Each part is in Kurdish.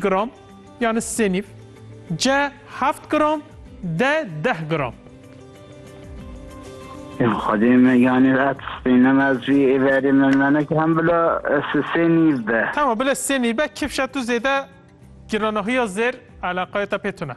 gram yani sê nîv, ce heft gram, de deh gram. Ya Xwedê me yanî et spînim ez jî ê verê min menek hem bila sê nîv be. Tamam bila sê nîv be kifşa tu zêde giranahiya zêr eleqaya te pê tune.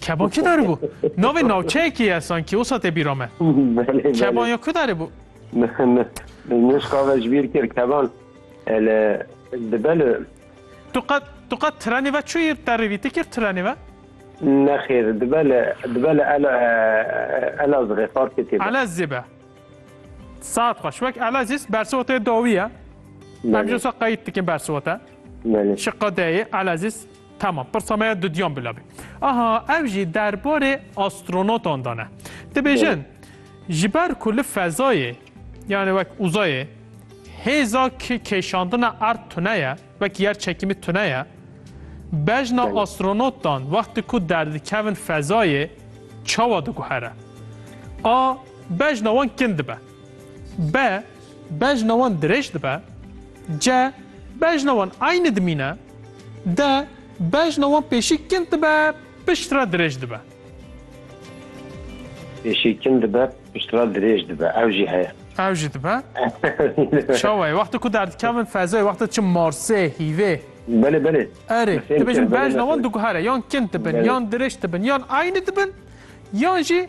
Keban kî darî bû? Navê navçeyekî ye sankî wisa tê bîra me. Keban ya ku darî bû? Nişka ve ji bîr kir keban li dibe li. Tu qet tu qet trenê ve çûyî terê vî ti kir trenê ve? Nexêr dibe li dibe li ela elazixê farkê tê. Elezî be. Saet xweş wek elezîs bersivotê dawî ye. Em jê wisa qeyît dikin bersivota. Şiqa deyê elezîs Tamam, pirsa me ya dudiyan bila bê. Aha, ev jî derbarê astronotan de ne. Dibêjin, ji ber ku li fezayê, yani wek uzayê, hêza ki kêşandina erd tune ye, wek yer çekîmî tune ye, bejna Belê. astronotan wextê ku derdikevin fezayê, çawa diguhere? A, bejna wan kin dibe. B. Bejna wan dirêj dibe. C. Bejna wan aynî dimîne. D. Bejna wan pêşî kin dibe pişt re dirêj dibe. Pêşî kin dibe pişt re dirêj dibe. Ew jî heye. Ew jî dibe. Çawa ye? Wextê ku derdikevin fezayê wextê çi Marsê, hîvê. Belê belê. Erê, dibêjin bejna wan diguhere yan kin dibin, yan dirêj dibin, yan aynî dibin, yan jî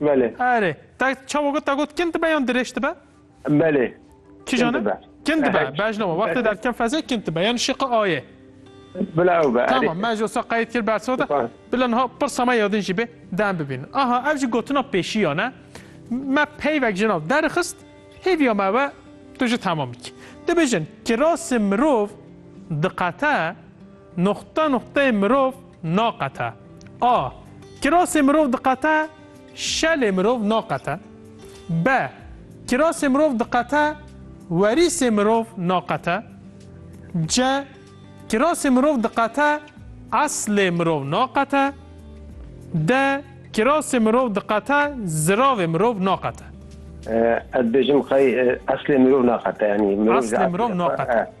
Belê. Erê. Te çawa got? Te got kin dibe yan dirêj dibe? Belê. Çi Kin jane? dibe. Kin dibe. Evet. Bej lama. Wextê derken fezê kin dibe. Yan şiqi aye. Bila ew be. Tamam. Me ji wisa qeyd kir bersa de. Süper. Bila niha pirsa me yadin jî bê dem bibîn. Aha ev jî gotina pêşî ya ne. Me peyvek ji nav derxist. Hêviya me ve tu jî tamam bikî. Dibêjin kirasê mirov diqete noxta noxteyê mirov Naqete. A. Kirasê mirov diqete, şelê mirov naqete. B. Kirasê mirov diqete, werîsê mirov naqete. C. Kirasê mirov diqete, eslê mirov naqete. D. Kirasê mirov diqete, ziravê mirov naqete. Ez dibêjim xey eslê mirov naqete. Yanî mirov Eslê mirov naqete.